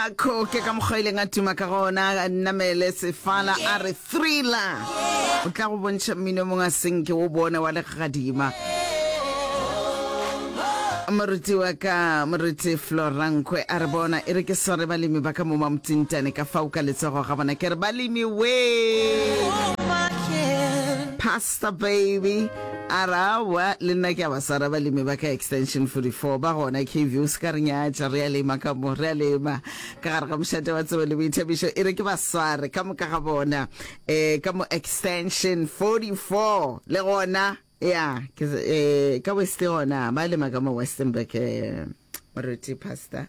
A khoke ka mokgwa ileng a tuma ka gona, a namele sefala a re thriller. O tla go bontšha mmino mongwe a senke wo bone wa legadima. Moruti wa ka moruti Florankwe a re bona e re ke sware balemi ba ka mo mamtsintane ka fao ka letsogo ga bona ke re balemi wee Pastor baby A re, Aowa, le nna ke a ba swara balemi ba ka Extension 44 ba gona KV. O se ka re nyatša, re a lema ka mo, re a lema ka gare ga mošate wa tsebo le boithabišo. E re ke ba sware ka moka ga bona um ka mo Extension 44 le gona, ya, ke um ka West gona, ba lema ka mo Westenburg um moruti, Pastor.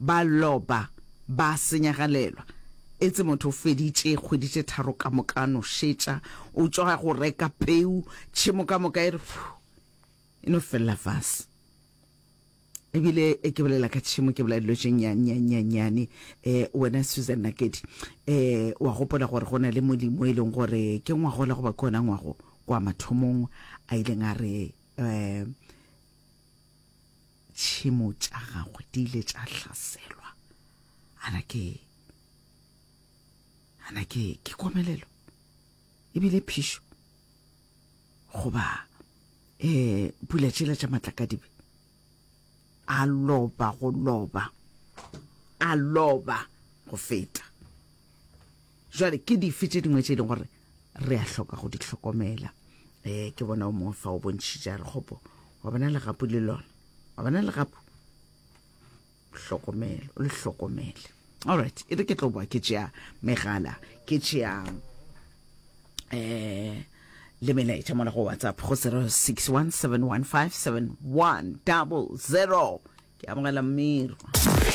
Ba loba, ba senyagalelwa. Etse motho o feditše kgwedi tše tharo ka moka a no šetša, o tšwa go reka peu, tšhemo ka moka e re phu! E no felela fase. E bile ke bolela ka tšhemo ke bolela dilo tše nnyannyannyane. Um wena Susan Nakedi, um wa gopola gore go na le molimo e leng gore ke ngwagola goba ke ona ngwago kwa mathomong a ileng a re, um tšhemo tša gagwe di ile tša hlaselwa ana ke ana ke ke komelelo ebile phišo goba um pula tšela tša matlakadibe a loba go loba a loba go feta Jwale ke dife tše dingwe tše e leng gore re a hloka go di hlokomela? Um ke bona o mongwe fa o bontšhitše a re kgopo wa bona legapu le lona wa bona legapu hlokomelo o le hlokomele allright e re ke tlo boa ke tšea megala ke tšea um le melaetša mola go whatsapp go 0617157100 ke amogela mmirwa